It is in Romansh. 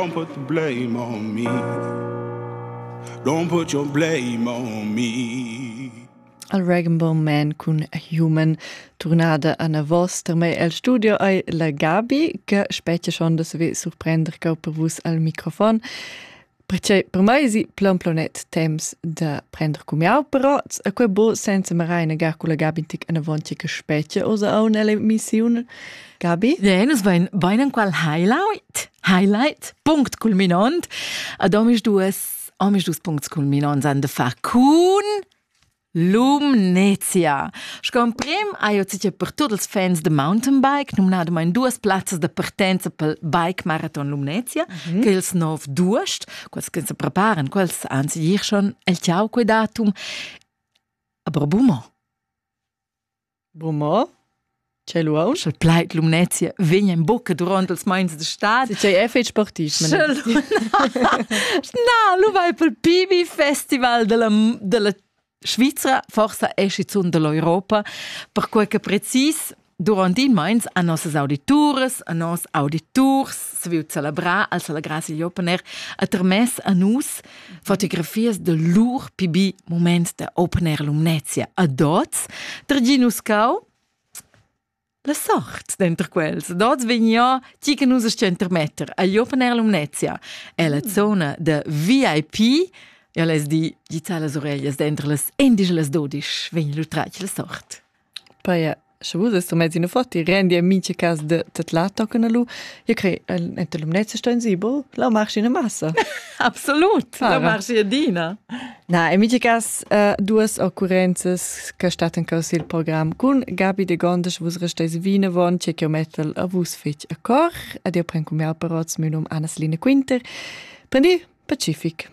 Don't put blame on me. Don't put your blame on me. Al Regenbaum Man cun Human turnada anavos per me el studio ai la Gabi che specie schon da se surprender che per vus al microfon Perché per mai si plan planet temps da prender cum jau però a quel bo senza me raina gar cu la Gabi tic anavonti che specie osa au nelle missione Gabi? Ja, nus vein bein enqual highlight. Highlight, punct culminant. Ad omis duas, omis dus puncts culminants han de far cun Lumnezia. Scomprem hai jo zicher per tuts els fans de mountainbike, numnadamain duas plazzas de partenza pel Bike Marathon Lumnezia, mm -hmm. che els nov d'uost, quels che se preparan, quels anzi dir schon el ciao quei datum, aber bumo. Bu mo? C'è lu aunc il plaid Lumnezia vegn en buca duront els meins de stad. Tgei è fetg sportiv. Na, lu vai pel PB Festival della, della Svizra, forsa è schizun dell'Europa, perquei che precis durant il meins a nossas audituras, a nos auditurs, se viu celebrar al celebrar igl opener a termess a nus fotografias de lur pibi moments de opener lumnezia a dots, terginus cau, la sort denter quels. Dots vegna ti che nus sto intermetter agli opener lumnezia. E la zona de VIP, ja les di, di za las orellas dentro las indigelas dodisch, vegn lu tratg la sort. Paja, sche vus est mezzi nu fatti, rendi a mincha cas da tadlar tochen allu, ja crei enta Lumnezia sto insibel, la marchi üna massa. Absolut! La marchi adina. Na, in mincha cas uh, duas occurrenzas che stattan cau sil program cun Gabi de Gondes, vus resteis vinavon, che ch'eu mettel a vus fetg a cor, ad eu pren cum mial parots, meu num Anna Line Quinter. Prendi pacific!